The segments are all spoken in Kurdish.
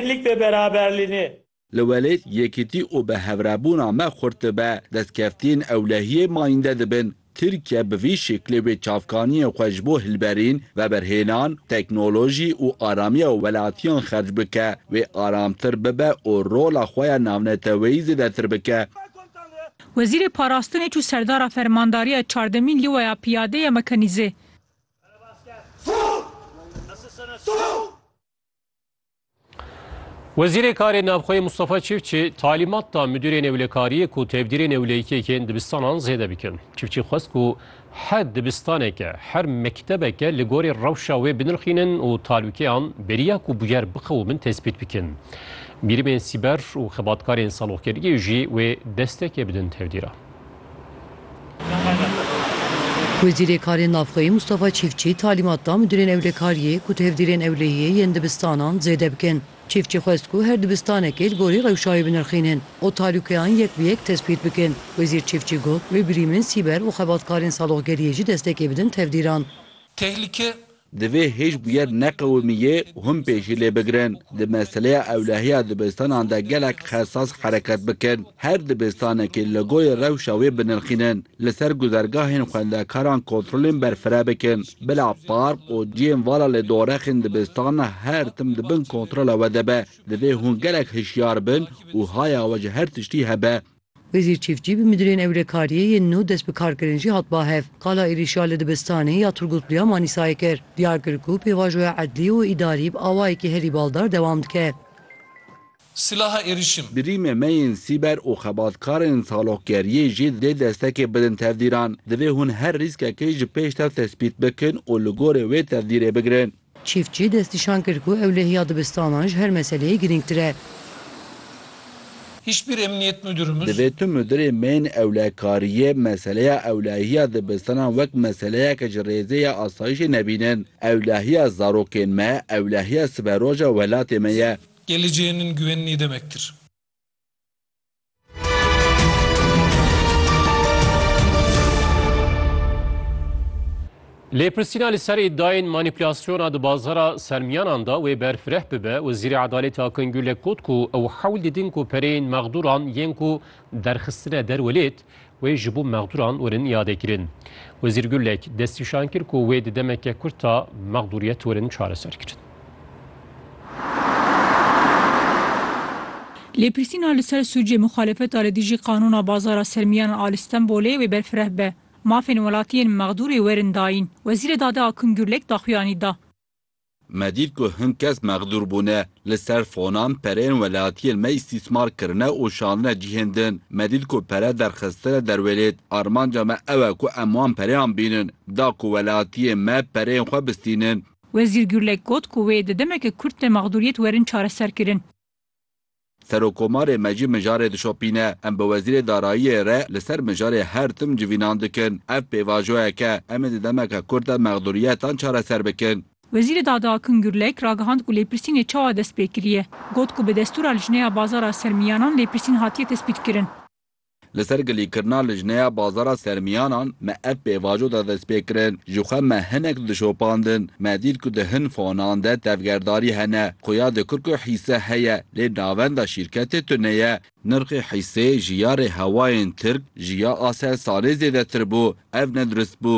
Birlik ve beraberlini. Li welêt yekîtî û bi hevrêbûna me xurt dibe, destkeftiyên ewlehiyê mayînde dibin. Tirkiye bi vî şeklê wê çavkaniyên xwe ji bo hilberîn, veberhênan, teknolojî û aramiya welatiyan xerc bike, wê aramtir bibe û rola xwe ya navneteweyî zêdetir bike. Wezîrê Parastinê çû serdara Fermandariya Çardemîn Lîwaya Piyade ya Mekanîze. Wezîrê Karê Navxweyê Mustafa Çiftçi talîmat da Midûrê Newlekariyê ku tevdîrê newleyîkekên dibistanan zêde bikin. Çiftçi xwest ku her dibistaneke, her mektebeke li gorî rewşa wê binirxînin û talûkeyan beriya ku bûyer biqewimin tespît bikin. Bîrimên sîber û xebatkarên saloqgeriyê jî wê desteke bidin tevdîra. Wezîrê Karên Navxweyî Mûstafa Çîfçî talîmat da midûrên ewlekariyê ku tevdîrên ewlehiyê yên dibistanan zêde bikin. Çîfçî xwest ku her dibistanekê li gorî rewşa wê binirxînin û talûkeyan yek bi yek tespît bikin. Wezîr Çîfçî got, Wê birîmên sîber û xebatkarên saloqgeriyê jî destekê bidin tevdîran. Tehlike Divê hêjbûyer neqewimî yê hûn pê jî lê bigirin. Di meseleya ewlehiya dibistanan de gelek xesas hereket bikin. Her dibistanekê logoyê rewşa wê binirxînin. Li ser guzergahên xwendekaran kontrolên berfireh bikin. Bila park û ciyên vala lê dorexên dibistana her tim di bin kontrola we de be. Divê hûn gelek hişyar bin û haya we ji her tiştî hebe. Wezîr Çîftçî bi Midûrên Ewlekariyê yên nû dest bi kar kirin jî hat ba hev. Qala êrîşa li dibistanê ya Turgutlu ya Manîsayê kir. Diyar kir ku pêvajoya edlî û îdarî bi awayekî herî baldar dewam dike. Silaha êrîşin. Birîmê me yên sîber û xebatkarên salokgeriyê jî divê destekê bidin tevdîran. Divê hûn her rîskekê ji pêş tev tespît bikin û li gorî wê tevdîrê bigirin. Çîftçî destnîşan kir ku ewlehiya dibistanan ji her meseleyê girîngtir e. Hiçbir emniyet müdürümüz. Divê tu mudirê meyên ewlekariyê meseleya ewlehiya dibistanan wek meseleyeke ji rêzê ya asayîşê nebînin. Ewlehiya zarokên me, ewlehiya siberoja welatê me ye. Geleceğinin güvenliği demektir. Lêpirsîna li ser îdayên manîpulasyona di bazara sermiyanan da wê berfireh bibe, Wezîrê Edalêtê Akın Gürlek got ku ew hewl didin ku pereyên mexdûran yên ku derxistine der welêt Wê ji bo mexdûran werin îadekirin. Wezîr Gulek destnîşan kir ku wê di demeke kurt de mexdûriyet werin çareserkirin. Lêpirsîna li ser sûcê muxalefeta li dijî qanûna bazara sermiyan a li Stenbolê wê berfireh be. Mafên welatiyên mexdûrê werin dayîn. Wezîrê Dadê Akun Gurlek daxuyanî da. Me dît ku hin kes mexdûr bûne, li ser fonan pereyên welatiyên me îstîsmar kirine û şandine cihên din. Me dît ku pere derxistine derwêlêt. Armanca me ew e ku em wan pereyan bînin. Da ku welatiyên me pereyên xwe bistînin. Wezîr Gurlek got ku wê di demeke kurt de mexdûriyet werin çareserkirin. Serokomarê me jî mijarê dişopîne. Em bi Wezîrê Darayiyê re li ser mijarê her tim civînan dikin. Ev pêvajoyek e. Em ê di demeke kurt de mexdûriyetan çareser bikin. Wezîrê Dada Akin Gurlek ragihand ku lêpirsînê çawa dest pê kiriye. Got ku bi destûra Lijneya Bazara Sermiyanan lêpirsîn hatiye tespîtkirin. Li ser gilîkirina lijneya bazara sermiyanan me ev pêvajo da destpêkirin, Ji xwe me hinek dişopandin, me dît ku di hin fonan de tevgerdarî hene, xuya di Kirko hîse heye lê navenda şîrketê tune ye. Nirxê hîsê ji ya rê hewayên Tirk ji ya Aselsanê zêdetir bû, ev nedurist bû.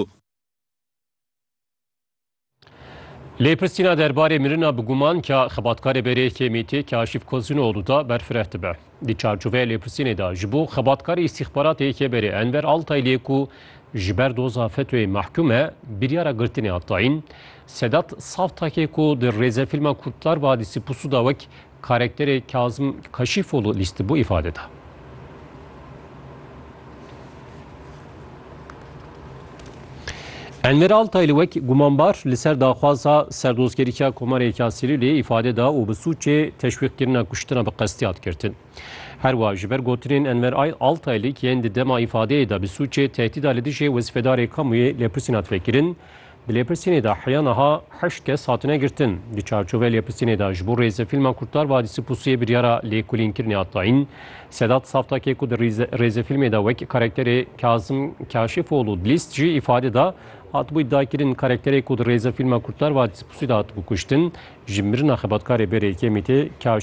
Lê pirsîna derbarê mirina bi guman ka xebatkarê berê KMT'ê Kaşif Kozunoğlu da berfireh dibe. Di çarçoveya lêpirsînê de ji bo xebatkarê îstîxbaratê yekê berê Enver Altayliyê ku ji ber doza FETÖ'yê mehkûm e biryara girtinê hat dayîn. Sedat Savtakê ku di rêzefîlma Kurtlar Vadisi Pusu da wek Karekterê Kazim Kaşîfoglu lîstibû îfade da. Enver Altay li wek gumanbar li ser daxwaza serdozgeriya Komarê Kasîlîlê îfade da û bi sûcê teşwîqkirina kuştina bi qestî hat girtin. Herwa ji ber gotinên Enver Altaylî ki yên di dema îfadeyê de bi sûcê tehdîda li dijê wezîfedarê kamuyê lêpirsîn hat vekirin, Di lêpirsînê de heya niha heşt kes hatine girtin. Di çarçovê lêpirsînê de ji bo rêzê fîlma Kurtlar Vadisi Pusuyê biryara lêkolînkirinê hat dayîn. Sedat Saftakê ku di rêzê fîlmê de wek karakterê Kazim Kaşifoğlu Dilist jî îfade da, hatibû îdiakirin karakterê ku di rêzê fîlma Kurtlar Vadisi Pusuyê de hatibû kuştin, ji mirina xebatkarê berê Kemîtê Kaşifoğlu.